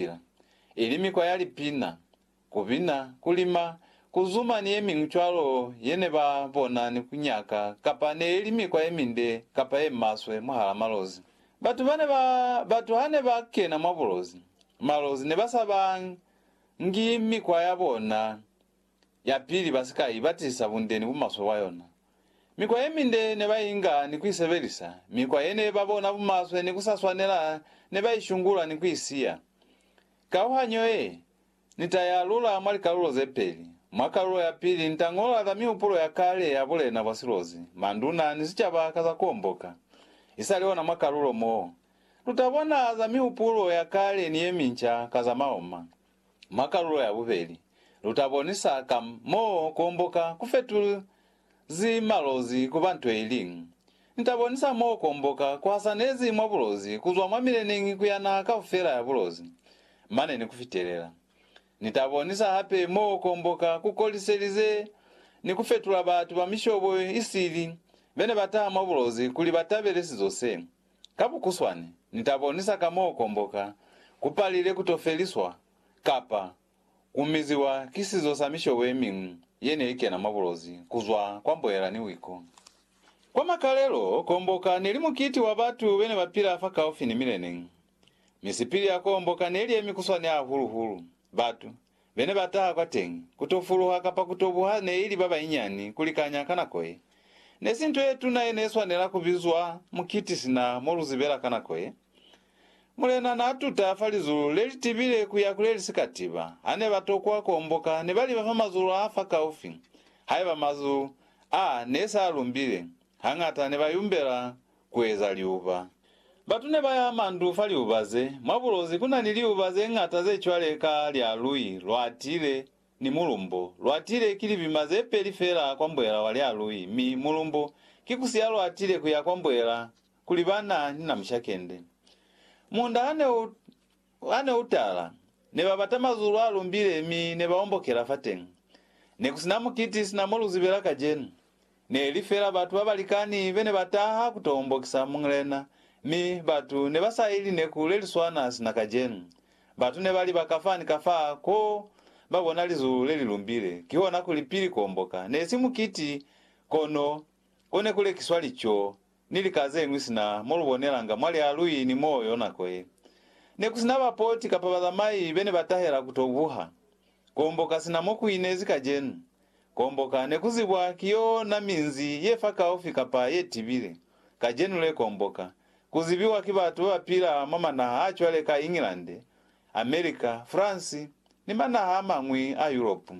Bibele, ili mikwa ya lipina, ku bina, ku lima, ku zuma ni ye miñwi cwalo ye ne ba bona ni ku nyaka kapa ne ili mikwa ye minde kapa ye maswe mwahala malozi. Batu ba ne ba batu ha ne ba kena mwa bulozi, malozi ne ba sa ba ngi mikwa ya bona yapili ba si ka i batisa bunde ni bumaswe bwa yona. Mikwa ye minde ne ba inga ni ku i sebelisa, mikwa ye ne ba bona bumaswe ni ku sa swanela ne ba i shungula ni ku i siya. Kauhanyo ye, Ni ta i alula mwa likalulo ze peli. Mwa kalulo ya pili, ni ta ñola za mihupulo ya kale ya bulena bwa silozi, manduna, ni sicaba ka za ku omboka. I sa li ona mwa kalulo mo, lu ta bona za mihupulo ya kale ni ye minca ka za maoma. Mwa kalulo ya bubeli, lu ta bonisa ka m'o ku omboka ku fetulezi malozi ku ba nto ye liñwi. Ni ta bonisa m'o ku omboka ku hasanezi mwa bulozi ku zwa mwa mileneñi ku ya naha kaufela ya bulozi, mane ni ku fitelela. Ni ta bonisa hape m'o ku omboka ku koliselize ni ku fetula batu ba mishobo i sili be ne ba taha mwa bulozi kuli ba tabele sizo se. Ka bukuswani, ni ta bonisa ka m'o komboka ku palile ku to feliswa kapa ku miziwa ki sizo sa mishobo ye miñwi ye ne i kena mwa bulozi ku zwa kwa mboela ni wiko. Kwa makalelo, komboka ne li mukiti wa batu be ne ba pila fakaufi ni mileneñi. Mi sipili ya komboka ne li ye mikuswani hahulu-hulu batu Be ne ba taha kwateñi, ku to fuluha kapa ku to buha ne ili ba banyinyani ku likanya ka nako ye. Ne si nto ye tuna ye ne swanela ku bizwa mukiti sina mo lu zibela ka nako ye. Mulena n'a tuta fa lizulu le li tibile ku ya ku le li si ka tiba. Ha ne ba tokwa ku omboka, ne ba liba fa mazulu a fa kaufi. Haiba mazulu a ne s'a lumbile, hañata ne ba yumbela kueza liuba. Batu ne ba ya mandu fa liuba ze. Mwa bulozi ku na ni liuba ze ñata ze cwale ka lya lui lwa tile ni mulumbo. Lwa tile ki libima ze peli fela kwa mbwela wa lya lui, mi mulumbo ki ku siya lwa tile ku ya kwa mbwela kuli ba na ni namushakende. Munda ha ne u Ha ne u tala, ne ba bata mazulu a lumbile mi ne ba ombokela fateñi. Ne ku si na mukiti sina mo lu zibela kacenu. Ne li fela batu ba balikani be ne ba taha ku to ombokisa Muñlena, mi batu ne ba sa i lineku le li swana sina kacenu. Batu ne ba li ba ka fa ni ka fa ko ba bona lizulu le li lumbile, kihona kuli pili ku omboka. Ne si mukiti, kono ko ne ku lekiswa lico. ni lika zeñwi sina mo lu bonelanga mwa lialui ni moyo nako ye. Ne ku si na bapoti kapa bazamai be ne ba tahela ku to buha. Kuomboka sina mo ku inezi kacenu. Kuomboka ne ku zibwa ki yo na minzi ye fakaufi kapa ye tibile. Kacenu le kuomboka ku zibiwa ki batu ba ba pila mwa manaha a cwale ka England, America, France, ni manaha a mañwi a Yuropu.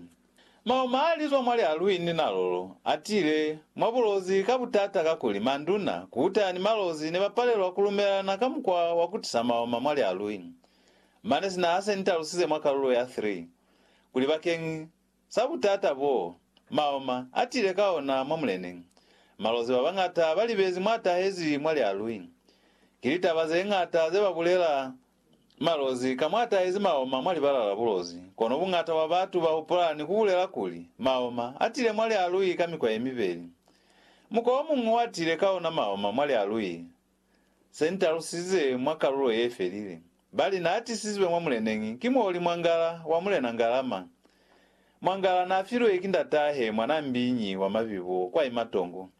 Mauma a li zwa mwa lialwi ni nalolo a tile mwa bulozi ka butata kakuli manduna, kuta, ni malozi ne ba palelwa ku lumelana ka mukwa wa ku tisa mauma mwa lialwi. Mane sina ha se ni talusize mwa kalulo ya 3 kuli bakeñi sa butata boo mauma a tile ka ona mwa muleneng, malozi ba bañata ba libezi mwa tahezi mwa lialwi. Ki litaba ze ñata ze ba bulela Malozi, Ka mwa tahezi maoma mwa libala la bulozi, kono buñata bwa batu ba hupula ni ku bulela kuli, Maoma a tile mwa lialui ka mikwa ye mibeli. Mukwa o muñwi wa tile ka ona maoma mwa lialui se ni talusize mwa kalulo ye felile, ba li n'a tisizwe mwa muleneñi ki muoli mwa ngala wa Mulena Ngalama. Mwa ngala n'a filwe ki ndat'ahe mwan'a mbiñi wa mabibo kwa imatongo.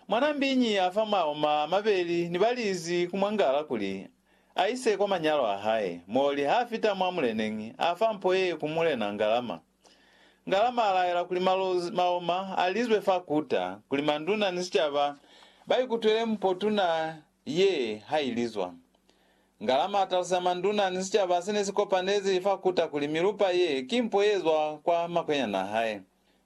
Mwanaa mbiñi ya fa maoma a mabeli ni ba lizi ku mwangala kuli a ise kwa manyalo a hae, mo li ha fita mwa muleneñi, a fa mpo ye ku Mulena Ngalama. Ngalama a laela kuli malozi, maoma, a lizwe fa kuta, kuli manduna ni sicaba ba ikutwele mpo tuna ye ha i lizwa. Ngalama a taluseza manduna ni sicaba se ne si kopanezi fa kuta kuli milupa ye ki mpo ye zwa kwa makwenyana a hae.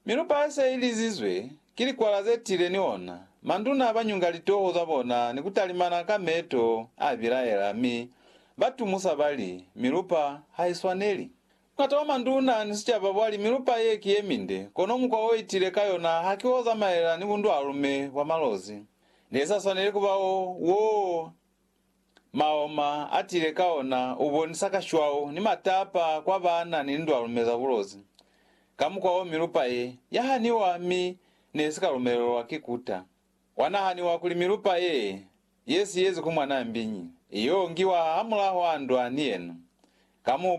Mi lupa se i lizizwe ki likwala ze tile ni ona, manduna ba nyunga litoho za bona ni ku talimana ka meto a bilaela, mi ba tumusa ba li, Milupa ha i swaneli. Mungata wa manduna ni sicaba bwa li, Milupa ye ki ye minde, kono mukwa o i tile ka yona haki wo zamaela ni bundwalume bwa malozi. Ne sa swaneli kuba wo, wo. Maoma atile ka ona ubonisa kashwau ni matapa kwa baana ni lindwalu mi za bulozi. Ka mukwa wo milupa ye ya haniwa mi ne si ka lumelelwa ki kuta. Kwa nahaniwa kuli milupa ye ye siyezi ku mwanaa mbiñi, i yo ngiwa hamulaho andwa ni yena. Ka mupu.